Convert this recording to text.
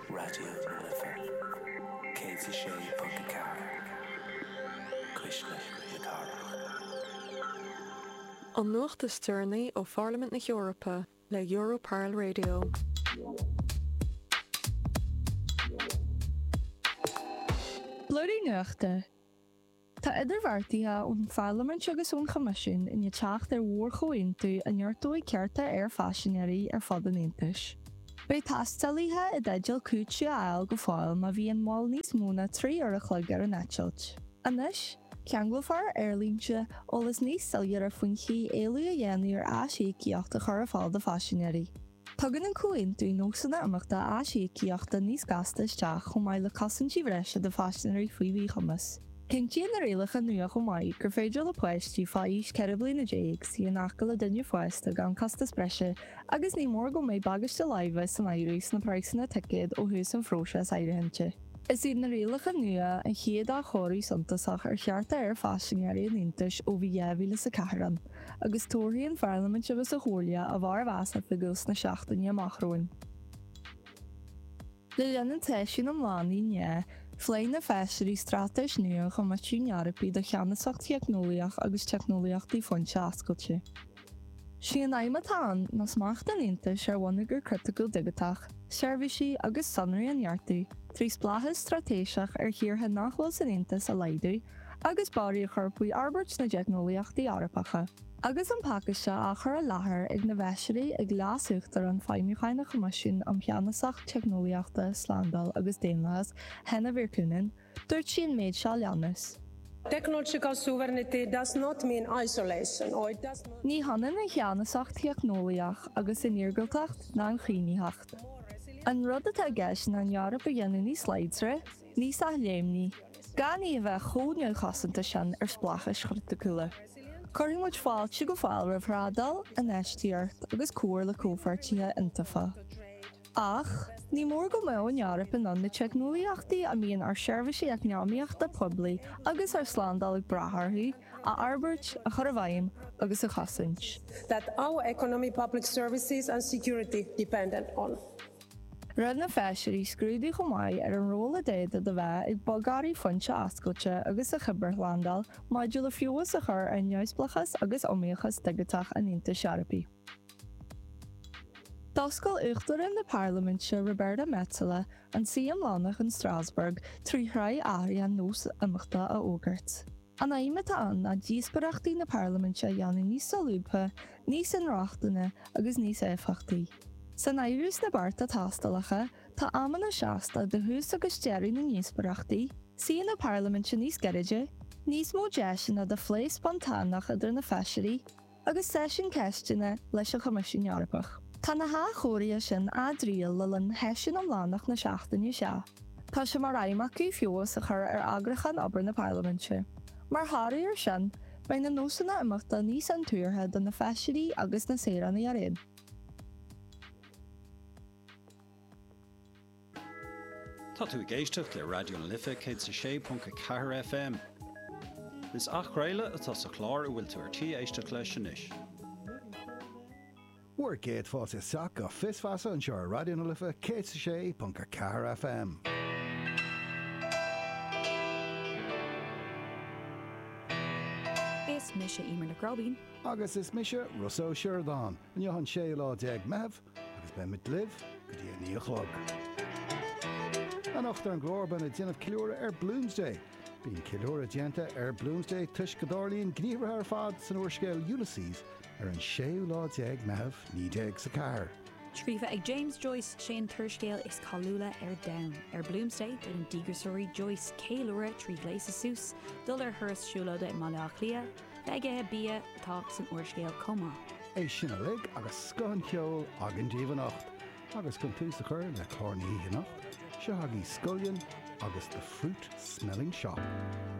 Raidió na Life 106.4 Cuisle na Cathrach. An nuacht is deireanaí ó Pharlaimint na hEorpa le Euro Parl Radio. Blúirí nuachta. Tá idirbheartaithe ón Pharlaimint agus ón Choimisiún i ndiaidh teacht ar mhórchomhaontú a neartóidh cearta aerphaisinéirí ar fud an Aontais. Beidh taistealaithe i dteideal cúiteamh a fháil go fóill má bhíonn moill níos mó ná trí uair an chloig ar an eitilt. Anois, ceanglófar ar aerlínte eolas níos soiléire faoin chaoi éileamh a dhéanamh ar aisíocaíocht a chur ar fáil do phaisinéirí. Tugann an Comhaontú nósanna imeachta aisíocaíochta níos gasta isteach chomh maith le cosaintí breise do phaisinéirí faoi mhíchumas. Cinntíonn na rialacha nua chomh maith gur féidir le páistí fá aois 14 bliana suí in aice le duine fásta gan costas breise agus ní mór go mbeidh bagáiste láimhe san áireamh sna praghsanna ticéad ó thús an phróisis áirithinte. Is iad na rialacha nua an chéad athchóiriú suntasach ar chearta aerphaisinéirí an Aontais ó bhí 2004 ann. agus tabharfaidh an Pharlaimint agus an Chomhairle a bhformheas oifigiúil sna seachtainí amach romhainn. Le linn an tseisiúin iomlánaigh inné, phléigh na Feisirí straitéis nua an Choimisiúin Eorpaigh do cheannasacht theicneolaíoch agus teicneolaíochtaí foinse oscailte. Is í an aidhm atá ann ná smacht an Aontais ar bhonneagar criticiúil digiteach, seirbhísí agus sonraí a neartú trí spleáchas straitéiseach ar thíortha nach bhfuil san Aontas a laghdú, agus borradh a chur faoi fhorbairt na dteicneolaíochtaí Eorpacha. Agus an pacáiste á chur i láthair na bhFeisirí ag Leas-Uachtarán Feidhmiúcháin an Choimisiúin um Cheannasacht Teicneolaíochta, Slándáil agus Daonlathas, Henna Virkkunen, dúirt sí an méid seo a leanas. Technological sovereignty does not mean isolation or it does not. Ní hionann an cheannasacht theicneolaíoch agus an iargúltacht ná an chaomhnaitheacht. An rud atá i gceist ná an Eoraip a dhéanamh níos láidre, níos athléimní, gan í a bheith chomh neamhchosanta sin ar spleáchais chriticiúla. Cuirfidh muid fáilte go fóill roimh thrádáil, infheistíocht agus comhar le comhpháirtithe iontaofa. Ach, ní mór go mbeadh an Eoraip in ann na teicneolaíochtaí a mbíonn ár seirbhísí eacnamaíochta poiblí agus ár slándáil ag brath orthu, a fhorbairt, a chur i bhfeidhm agus a chosaint. that our economy, public services and security depend on. Rinne na Feisirí scrúdú chomh maith ar an ról a d'fhéadfadh a bheith ag bogearraí foinse oscailte agus an chibearshlándáil maidir le feabhas a chur ar neamhspleáchas agus iomaíochas digiteach an Aontais Eorpaigh. D'oscail Uachtarán na Parlaiminte Roberta Metsola an suí iomlánach in Strasbourg trí shraith athruithe ar nós imeachta a fhógairt. An aidhm atá ann ná díospóireachtaí na Parlaiminte a dhéanamh níos solúbtha, níos inrochtana agus níos éifeachtaí. San áireamh sna bearta tástálacha tá amanna seasta do thús agus deireadh na ndíospóireachtaí, suíonna parlaiminte níos gairide, níos mó deiseanna do phlé spontáineach idir na Feisirí agus seisiún ceisteanna leis an Choimisiún Eorpach. Tá na hathchóirithe sin á dtriail le linn sheisiún iomlánach na seachtaine seo. Tá sé mar aidhm acu feabhas a chur ar eagrúchán obair na Parlaiminte. Mar thoradh air sin, beidh na nósanna imeachta níos intuartha do na Feisirí agus na saoránaigh araon. Tá tú ag éisteacht le Raidió na Life 106.4 FM. Is athchraoladh atá sa chlár a bhfuil tú ar tí éisteacht leis anois. Bhur gcéad fáilte isteach go Fios Feasa anseo ar Raidió na Life 106.4 FM. Is mise Emer Nic Róibín. Agus is mise Rossa Ó Sioradáin, inniu an séú lá déag Meitheamh agus beidh muid libh go dtí a naoi a chlog. Anocht ar an gclár beidh muid ag déanamh ceiliúradh ar Bloomsday. Bíonn ceiliúradh déanta ar Bloomsday toisc go dtarlaíonn gníomhartha ar fad san úrscéal Ulysses ar an séú lá déag Meitheamh naoi déag is a ceathair. Scríofa ag James Joyce, sé an t-úrscéal is cáiliúla ar domhan. Ar Bloomsday déanann díograiseoirí Joyce ceiliúradh trí ghléasadh suas, dul ar thuras siúlóide i mBaile Átha Cliath, bheith ag ithe bia atá san úrscéal chomh maith. É sin uilig agus scoth an cheoil againn daoibh anocht agus chun tús a chur le clár na hoíche anocht, seo agaí Scullion agus The Fruit Smelling Shop.